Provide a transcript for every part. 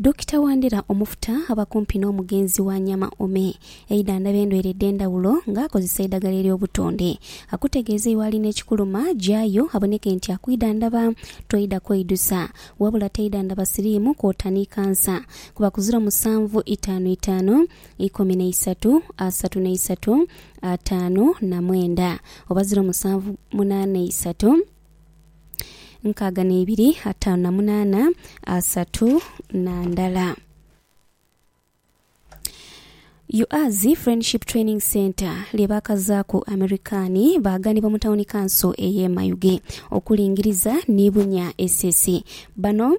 Dokita Wandera Omufuta aba kumpi n'omugenzi wa Nyama Ome eidhandhaba endwaire edh'endhawulo nga akozesa eidhagala ery'obutonde. Akutegeeza iwe alina ekikuluma gyayo aboneke nti akwidhandhaba. Toidha kweidusa wabula teidhandhaba siriimu kwota ni kansa. Kuba ku ziro musanvu itaanu itaanu ikumi na isatu asatu na isatu ataanu na mwenda oba ziro musanvu munaana isatu. nkaaga n'eibiri ataanu na munaana asatu na ndala. UAZI Friendship Training Centre lye baakazaaku Amerikaani baaganibwa mu tawuni kanso ey'e Mayuge okulingiriza ni bunya esesi. Bano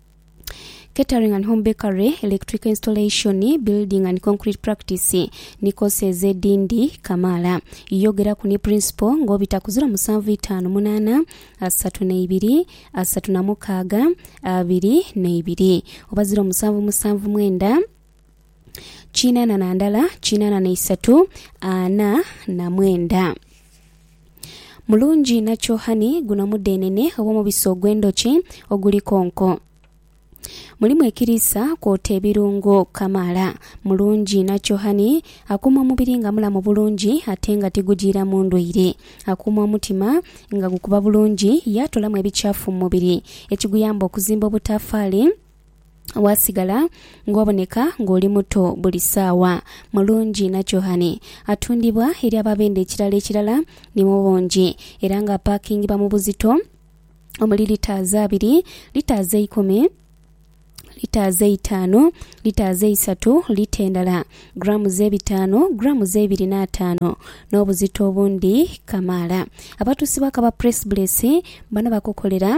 Catering and Home Bakery, Electrical Installation, Building and Concrete Practice ni koosi ezo edhindi kamaala. Yogeraku ni Principal ng'obita ku ziro musanvu itaanu munaana asatu na ibiri asatu na mukaaga abiri na ibiri oba ziro musanvu musanvu mwenda kinaana na ndala kinaana na isatu ana na mwenda. Mulungi nakyo hani guno mudhenene oba omubisi ogw'endhoki oguli konko. Mulimu ekiriisa kwota ebirungo kamaala. Mulungi nakyo hani akuuma omubiri nga mulamu bulungi ate nga tigujiiramu ndwaire. Akuuma omutima nga gukuba bulungi yaatolamu ebikyafu mu mubiri ekiguyamba okuzimba obutaafaali. Waasigala ng'oboneka ng'oli muto buli saawa. Mulungi Nakyohane atundibwa eri ababendhe ekirala ekirala ni mu bungi era ng'apaakingibwa mu buzito omuli litaazi abiri, litaazi eikumi, litaazi eitaanu, litaazi eisatu, lita endala grammes ebitaanu, grammes eibiri n'ataanu n'obuzito obundi kamaala. Abatuusi b'akaba Press Bless bano bakukolera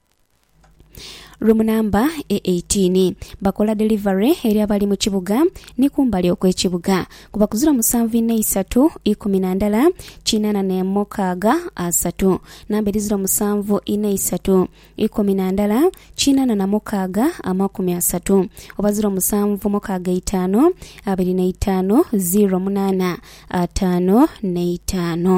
Rumu namba e 18 bakola delivery eri abali mu kibuga ni kumbali okw'ekibuga kuba ku ziro musanvu inha isatu ikumi na ndala kinana n'emukaaga asatu namba eri ziro musanvu inha isatu ikumi na ndala kinana na mukaaga amakumi asatu oba ziro musanvu mukaaga eitaanu abiri na itaanu ziro munaana ataanu n'eitaanu.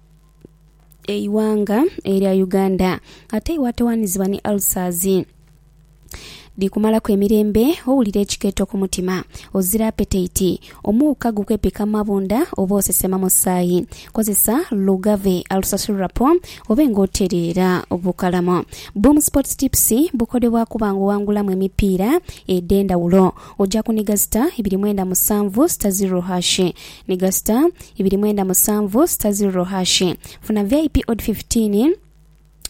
eighanga erya Uganda ate iwatowanizibwa ni ulcers dhikumalaku emirembe, owulira ekikeeto ku mutima, ozira apetaiti, omuuka gukwepika mu mabunda oba osesema musaayi. Kozesa Lugave Ulcer Syrup obe nga otereera bukalamu. Boom Sports Tips bukodebwa kuba nga owangulamu emipiira edh'endhawulo. Oja kuniga star ibiri mwenda musanvu star zero hash Mega star ibiri mwenda musanvu star ziriro hash funa vip odi fifitiini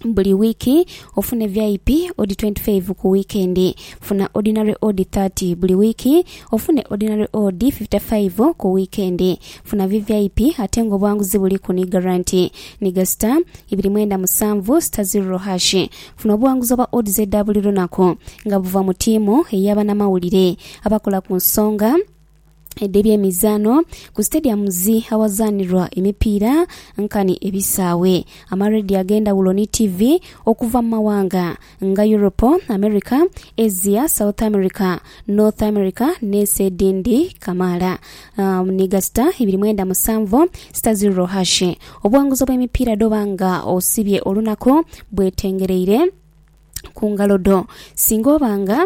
buli wiiki ofune vip odi twenti faivu ku wiikendi. Funa odinare odi thati buli wiiki ofune odinare odi fifita faivu ku wiikendi. Funa vvip ate nga obwanguzi buliku ni garanti. Mega star ibiri mwenda musanvu star ziriro hash funa obuwanguzi obwa odds edha buli lunaku nga buva mu tiimu ey'abanamawulire abakola ku nsonga. edh'ebyemizaano ku stadiums awazaanirwa emipiira nkani ebisaawe, amarediyo ag'endhawulo ni ttivi okuva mu mawanga nga Europe, America, Asia, South America, North America n'ensi edhindi kamaala. Ni gasita ibiri mwenda musanvu sita zirro hashi obuwanguzi obw'emipiira dh'oba nga osibye olunaku bwetengereire ku ngalo dho. Singa oba nga.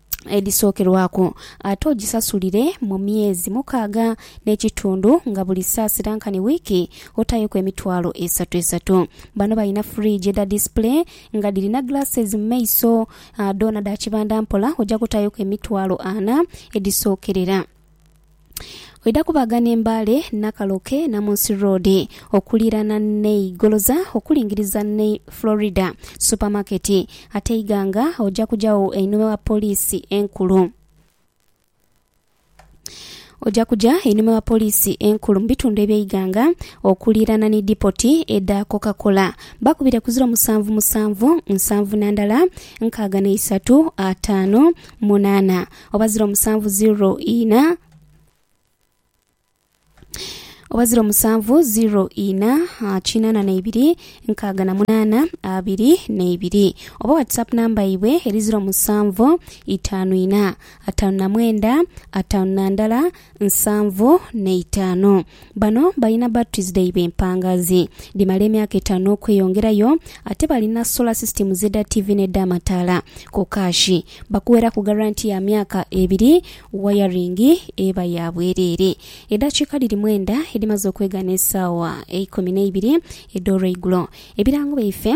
edhisookerwaku, ate ogisasulire mu myezi mukaaga n'ekitundu nga buli saasira nkani wiiki otaayoku emitwalo esatu esatu. Bano balina fridge edha display nga dhirina glasses mu maiso, dhoona dha kibanda mpola oja kutaayoku emitwalo ana edhisookerera. Oidha kubaga n'e Mbale, Nakaloke, Namunsi Road okuliirana n'e Igoloza okulingiriza n'e Florida Supermarket. Ate e Iganga oja kujagho einhuma wa Poliisi Enkulu. Oja kuja einhuma wa Poliisi Enkulu mu bitundu eby'e Iganga okuliirana ni dipoti edha Coca-Cola. Bakubire ku ziro musanvu musanvu, nsanvu na ndala, nkaaga na isatu, ataanu, munaana. oba ziro musanvu ziro ina oba ziro musanvu ziro ina ah, kinana neibiri nkaaga na munana abiri neibiri oba whatsapp namba yaibwe eri ziro musanvu itanu ina atanu na mwenda atanu na ndala nsanvu n'eitaanu. Bano balina birth Tuesday b'empangaazi dhimala emyaka etaanu n'okweyongerayo ate balina solar systems edha ttivi n'edh'amataala ku kaashi. Bakuweraku garanti ya myaka ebiri, wayaringi eba ya bwereere. Edhakiika dhiri mwenda edhimaze okwegana esaawa eikumi n'eibiri edh'olweigulo. Ebirango byaife.